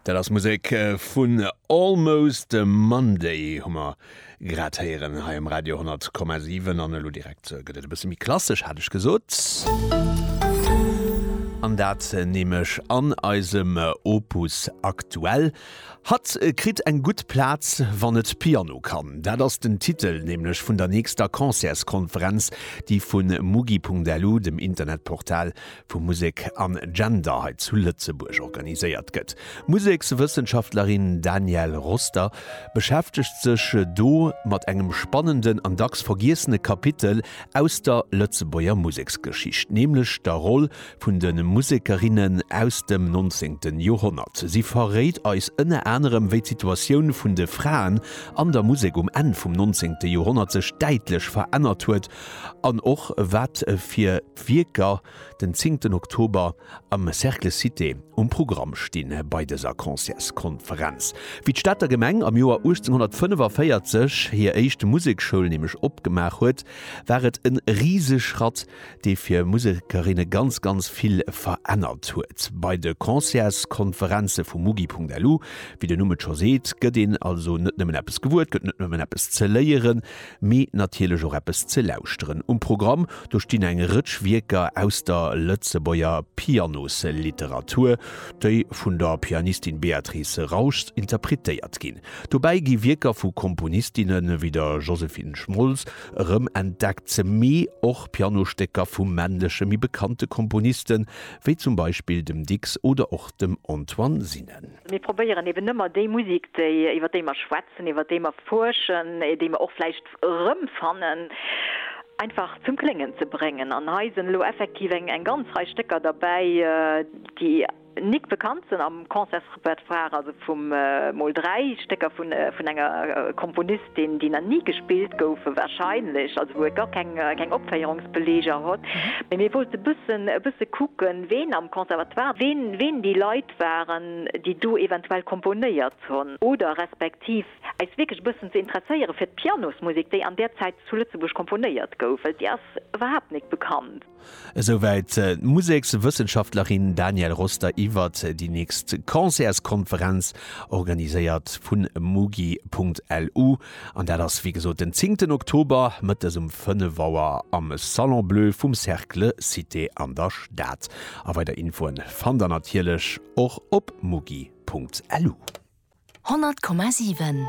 Dat ass Musek vun Almost a Monday hu mer grad héieren hei um Radio 10,7 an elo direkt gëtt et e bësse méi klassesch, hat ech gesot. An dat nämlech an eisem Opus aktuell. Hatt kritt eng gutt Plaz, wann et Piano kann. Dat ass den Titel nämlech vun der nächster Concertskonferenz, déi vun mugi.lu, dem Internetportal vu Musek an Gender hei zu Lëtzebuerg organiséiert gëtt. D'Musekswëssenschaftlerin Danielle Roster beschäftegt sech do mat engem spannenden an dacks vergiessene Kapitel aus der Lëtzebuerger Museksgeschicht, nämlech der Roll vun de Musekerinnen aus dem 19. Joerhonnert. Si verréit eis ënner anerem, wéi d'Situatioun vun de Fraen an der Musek um Enn vum 19. Joerhonnert sech däitlech verännert huet an och wat fir. Wierker den zéngten Oktober am Cercle Cité um Programm stinn. Bei dëser Concertskonferenz wéi d'Stater Gemeng am Joer 1845 hir éischt Musekschoul nämlech opgemaach huet, war et en Riseschratt dee fir Musekerinne ganz ganz vill verännert huet. Bei de Concertskonferenze vum Mugi.lu, wéi den Numm et scho seet, gëtt een also net nëmmen eppes gewuer, et gëtt net nëmmen eppes ze léieren, mee natierlech och eppes ze lauschteren. Um Programm, do stinn eng Rëtsch Wierker aus der Lëtzebuerger Pianosliteratur, déi vun der Pianistin Béatrice Rauschs interpretéiert ginn. Dobäi gi Wierker vu Komponistinne wéi der Josephine Schmolz erëmentdeckt, mee och Pianostécker vu männleche méi bekannte Komponiste wéi zum Beispill dem Dicks oder och dem Antoine Sinen. Mir probéieren eben ëmmer déi Musek, déi, iwwer déi mer schwätzen, iwwer déi mer fuerschen, déi mer och vläicht erëmfannen, einfach zum Kléngen ze bréngen. An hei sinn elo effektiv eng ganz Rei Stécker derbäi, déi nik bekannt sinn am Concertsrepertoire, also vum, mol dräi Stécker vun enger Komponistin, deen déi nach ni gespillt goufen wahrscheinlech, also wou et gar keng keng Opféierungsbeleger hott, mee mir wollte bëssen e bësse kucken ween am Conservatoire, ween ween déi Leit waren déi do eventuell komponéiert honn oder respektiv eis wierklech e bëssen ze interesséiere fir d'Pianosmusek déi an där Zäit zu Lëtzebuerg komponéiert gouf, well déi ass iwwerhaapt nik bekannt. Esou wäit d'Musekswëssenschaftlerin Danielle Roster iwwert déi nächst Concertskonferenz, organiséiert vu mugi.lu. An dat ass wéi gesot den zéngten Oktober, mëttes um 5 Auer am Salon Bleu vum Cercle Cité an der Stad. A weider Infoen fannt der natierlech och op mugi.lu. 100,7.